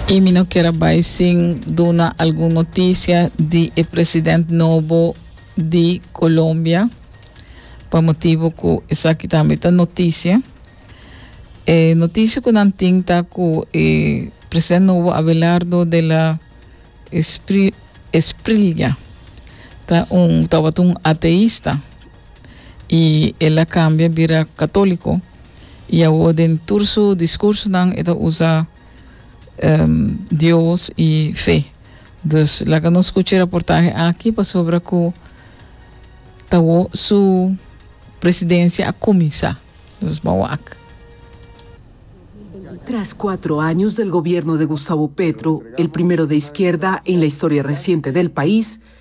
Y mi no kier a bay sin duna algun noticia di e president nobo di Colombia, pa motibo cu esaki tambe ta noticia. E noticia cu nan tin ta cu e president nobo Abelardo de la Espri- Esprilia ta un, tawata un ateista. I el a kambia bira katóliko, i awor den tur su diskursonan e ta usa Dios i fe. Dus laga nos kucha e raportahe aki pasobra ku ta awor su presidensia a kuminsá. Dus bo a wak. Tras cuatro años del gobierno de Gustavo Petro, el primero de izquierda en la historia reciente del país,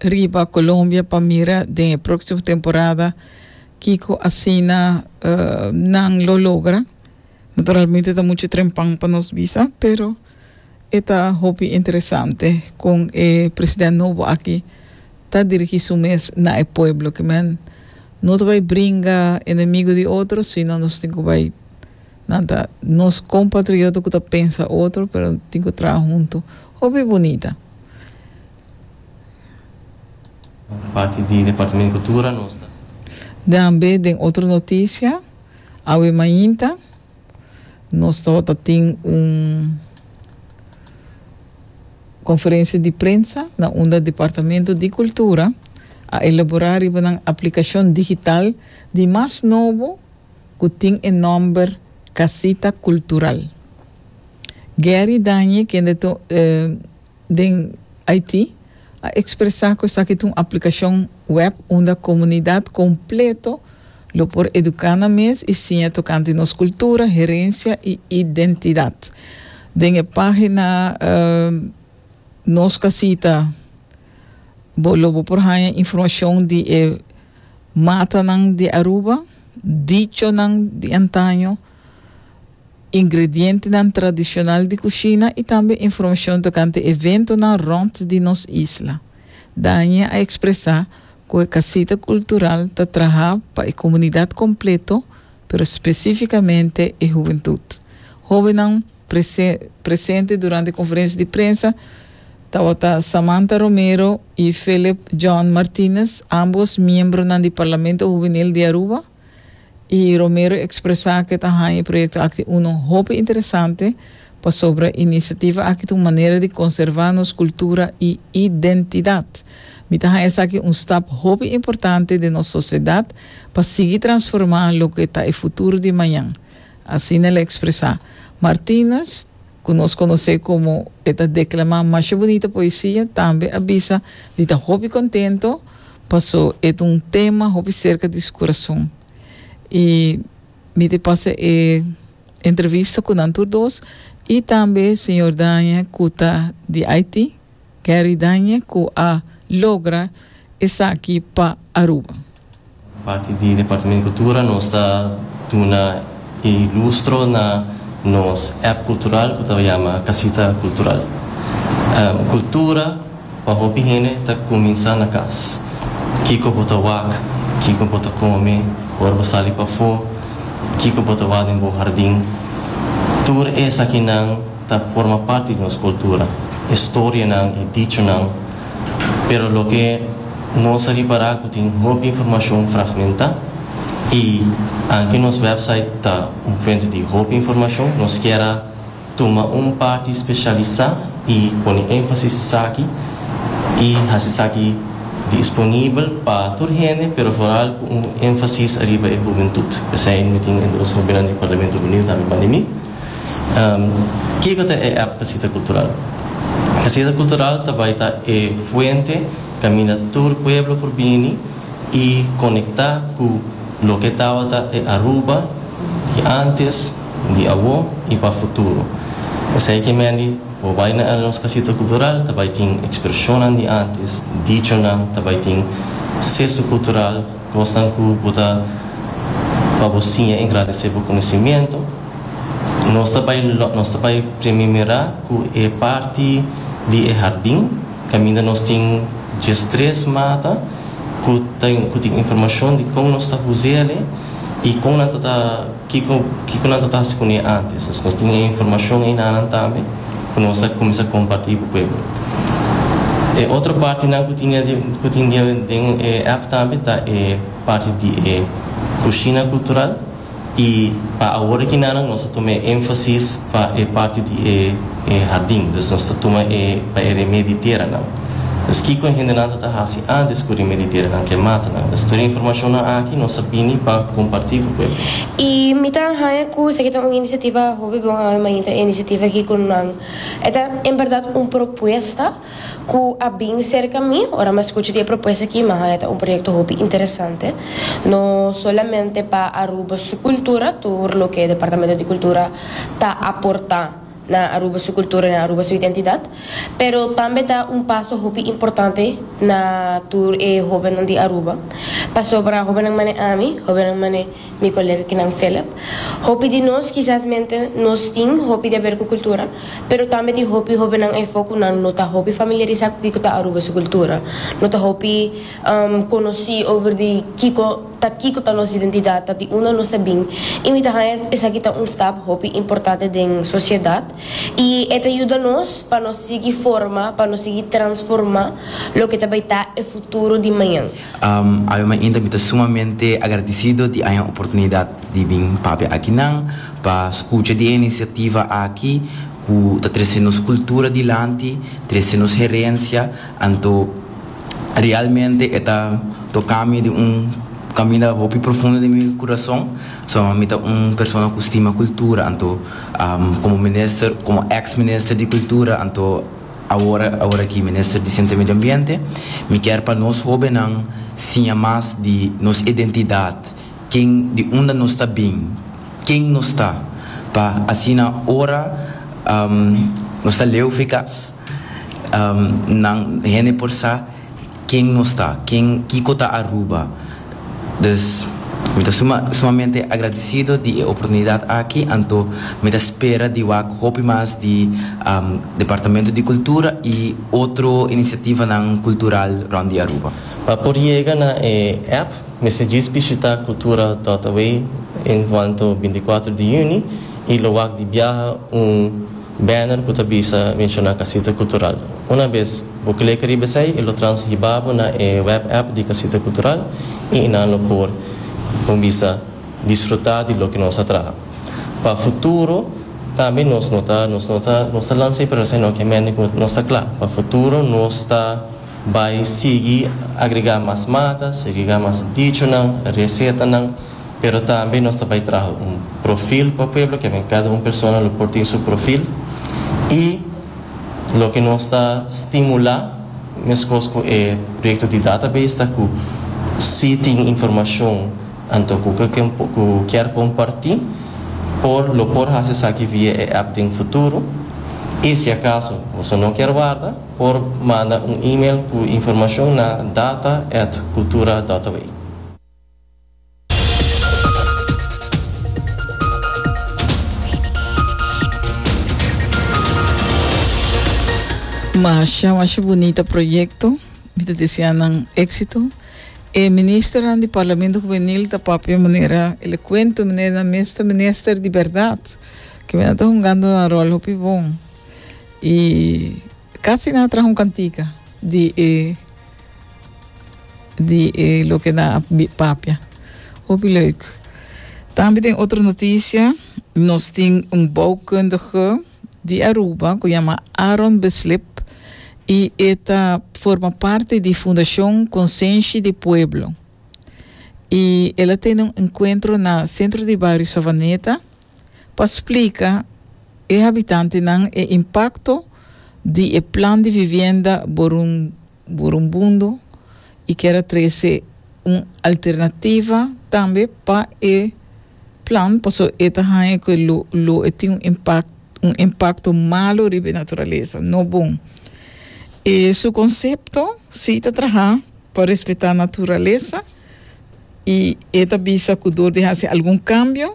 riba Colombia pa mira den e próksimo temporada kiko asina nan lo logra. Naturalmente ta muchu trempan pa nos bisa, pero e ta hopi interesante kon e president nobo aki ta dirigí su mes na e pueblo. Ke men no ta bai bringa enemigo di otro, sino nos tin ku bai nan ta nos kompatrioto ku ta pensa otro, pero tin ku traha huntu. Hopi bunita. Tambe den otro notisia, awe mainta nos tabata tin un konferensia di prensa na unda Departamento di Kultura a elaborá riba nan aplikashon digital di mas nobo ku tin e nòmber Casita Cultural. Gerry Dañe kende den Haiti a expresa cu esaki ta un aplicacion web unda comunidad completo lo por educa nan mes y siña tocante nos cultura, herencia y identidad. Den e pagina Nos Casita bo lo bo por haña informacion di e matanan di Aruba, dichonan di antaño, ingredientenan tradishonal di kushina i tambe informashon tokante eventonan rònt di nos isla. Danie a ekspresá ku e kasita kultural ta trahá pa e komunidat kompleto, pero spesífikamente e huventut. Hóbennan prese presente durante e konferensia di prensa tabata Samantha Romero i Philip John Martinez, ámbos miembronan di Parlamento Huvenil di Aruba. y Romero expresa ke ta haña e proyecto aki uno hopi interesante pasobra iniciativa aki ta un manera di conserva nos cultura y identidad. Mi ta haña esaki un stap hopi importante den nos sociedad pa sigui transforma loke ta e futuro di mañan, asina el a expresa. Martinez ku nos konos'é komo e ta deklamá masha bunita poesia, tambe a bisa di ta hopi kontento paso e ta un tema hopi serka di su kurason. I mi te pasa e entrevista ku nan tur dos i tambe señor Daña ku ta di Haití. Gary Dañe cu a logra esaki pa Aruba. Parti di Departamento Cultura nos ta duna e lustro na nos app cultural cu ta yama Casita Cultural. Cultura pa hopi hende ta cuminsa na cas. Kico bo ta wak, kico bo ta come ora bo sali pafo, kico bo ta wak den bo hardin, tur esakinan. Ta forma parti di nos cultura, e storianan, e dichonan, pero loke nos a ripara cu tin hopi informacion fragmenta y anke nos website ta un fuente di hopi informacion, nos kier a tuma un parti specialisa y pone enfasis esaki y haci esaki disponibel pa tur hende, pero foral cu un enfasis ariba e hubentud. P'esei nu tin e dos hopinan di Parlamento runiu tambe banda di mi. Kiko ta e app Casita Cultural? Casita Cultural ta bai ta e fuente caminda tur pueblo por bini y conecta cu loke tabata e Aruba di antes, di awo y pa futuro. Esey ki mendi bo bai na el nos Casita Cultural ta bai tin expresionnan di antes, dichonan, ta bai tin sesu cultural, Kosnan ku bo ta pa bo siña engrandecí bo konosimiento. Nos ta bai lònt, nos ta bai primi mirá ku e parti di e hardin kaminda nos tin djes tres mata ku ta ku tin informashon di kon nos ta huz'e alí i kon nan ta ta. Kiko kiko nan ta ta hasi ku ne antes? Nos tin e informashon ei nanan tambe ku nos a kuminsá kompartí ku pueblo. E otro partinan ku tin den ku tin den den e app tambe ta e parti di e kushina kultural i pa awor aki nanan nos a tuma e énfasis pa e parti di e e hardin. Dus nos ta tuma e pa e remé di teranan. Pues kiko e hendenan ta ta hasi a descubri meliterenan ke mata nan? Pues tur e informacionnan aki nos a bini pa comparti cu pueblo. Y mi ta haña cu esaki ta un iniciativa hopi bon Ave Maria ta e iniciativa aki cu nan e ta en berdad un propuesta cu a bin cerca mi ora mi a scucha di e propuesta aki mi a haña ta un proyecto hopi interesante no solamente pa Aruba su cultura tur loke Departamento di Cultura ta aporta. na Aruba su kultura i na Aruba su identidat, pero tambe ta un paso hopi importante na tur e hobennan di Aruba, pasobra hobennan manera ami, hobennan manera mi kolega kinan Philip, hopi di nos kisas mente nos tin hopi di haber ku kultura, pero tambe tin hopi hobennan afo ku nan no ta hopi familiarisá ku kiko ta Aruba su kultura, no ta hopi konosí over di kiko. Ta kiko ta nos identidat, ta di unda nos ta bin i mi ta haña esaki ta un stap hopi importante den sosiedat i e ta yuda nos pa nos sigui forma, pa nos sigui transformá loke ta bai ta e futuro di mañan. Awe mainta mi ta sumamente agradisido di haña oportunidat di bin papia akinan, pa skucha di e inisiativa aki ku ta trese nos kultura dilanti, trese nos herensia, anto. Realmente e ta tokami di un kaminda hopi profundo di mi kurason. So mi ta un persona ku stima kultura anto komo minister komo eks minister di kultura anto awor aworakey minister di siensia medio ambiente mi kier pa nos hobennan siña mas di nos identidat Ken di unda nos ta bin? Ken nos ta? Pa asina ora nos ta leu frekas, nan, hende por sa ken nos ta, ken, kiko ta Aruba. Dus, mi ta suma, sumamente agradisido di e oportunidat aki, anto mi ta spera di wak hopi mas di Departamento di Kultura i otro inisiativanan kultural rònt di Aruba. Pa por yega na e app. Mester djis bishita Cultura Dotaway en cuanto binticuatro di juni y lo wak di biaha un banner cu ta bisa menciona Casita Cultural. Una bes bo clica riba esey e lo trans hiba bo na e web app di Casita Cultural y enan lo por, con bisa, disfruta di loke nos a traha. Pa futuro tambe nos no ta nos no ta nos ta lanza e proyecto sino que mente cu nos ta cla pa futuro nos ta. Bai sigui agregá mas mata, segregá mas dichonan, resetanan, pero tambe nos ta bai traha un profil pa pueblo, kende kada un persona lo por tin su profil i loke nos ta stimulá meskos ku e proyekto di database ta ku si tin informashon anto ku ku kier kompartí por lo por hasi esaki via e app den futuro i si akaso boso no kier warda. Por manda un email cu informacion na data at cultura dota bai. Masha masha bunita proyecto, mi ta desea nan exito. E ministernan di Parlamento Juvenil ta papia e manera elocuente, e manera nan mes ta menester di berdad. Kemi nan ta hungando nan rol hopi bon. Y casi nan a traha un cantica di e, di e loke nan a papia. Hopi leuk. Tambe den otro noticia, nos tin un bouwkundige di Aruba cu yama Aaron Beslip y e ta forma parti di Fundacion Consenshi di Pueblo. Y el a tene un encuentro na Centro di Bario Savaneta, pa splika e habitantenan e impakto di e plan di vivienda Burumbundo i kier a trese un alternativa tambe pa e plan paso e ta haña ku e lo e tin un impakto malu riba e naturalesa, no bon. E su konsepto si ta traha pa respetá naturalesa i e ta bisa ku dor di hasi algun kambio,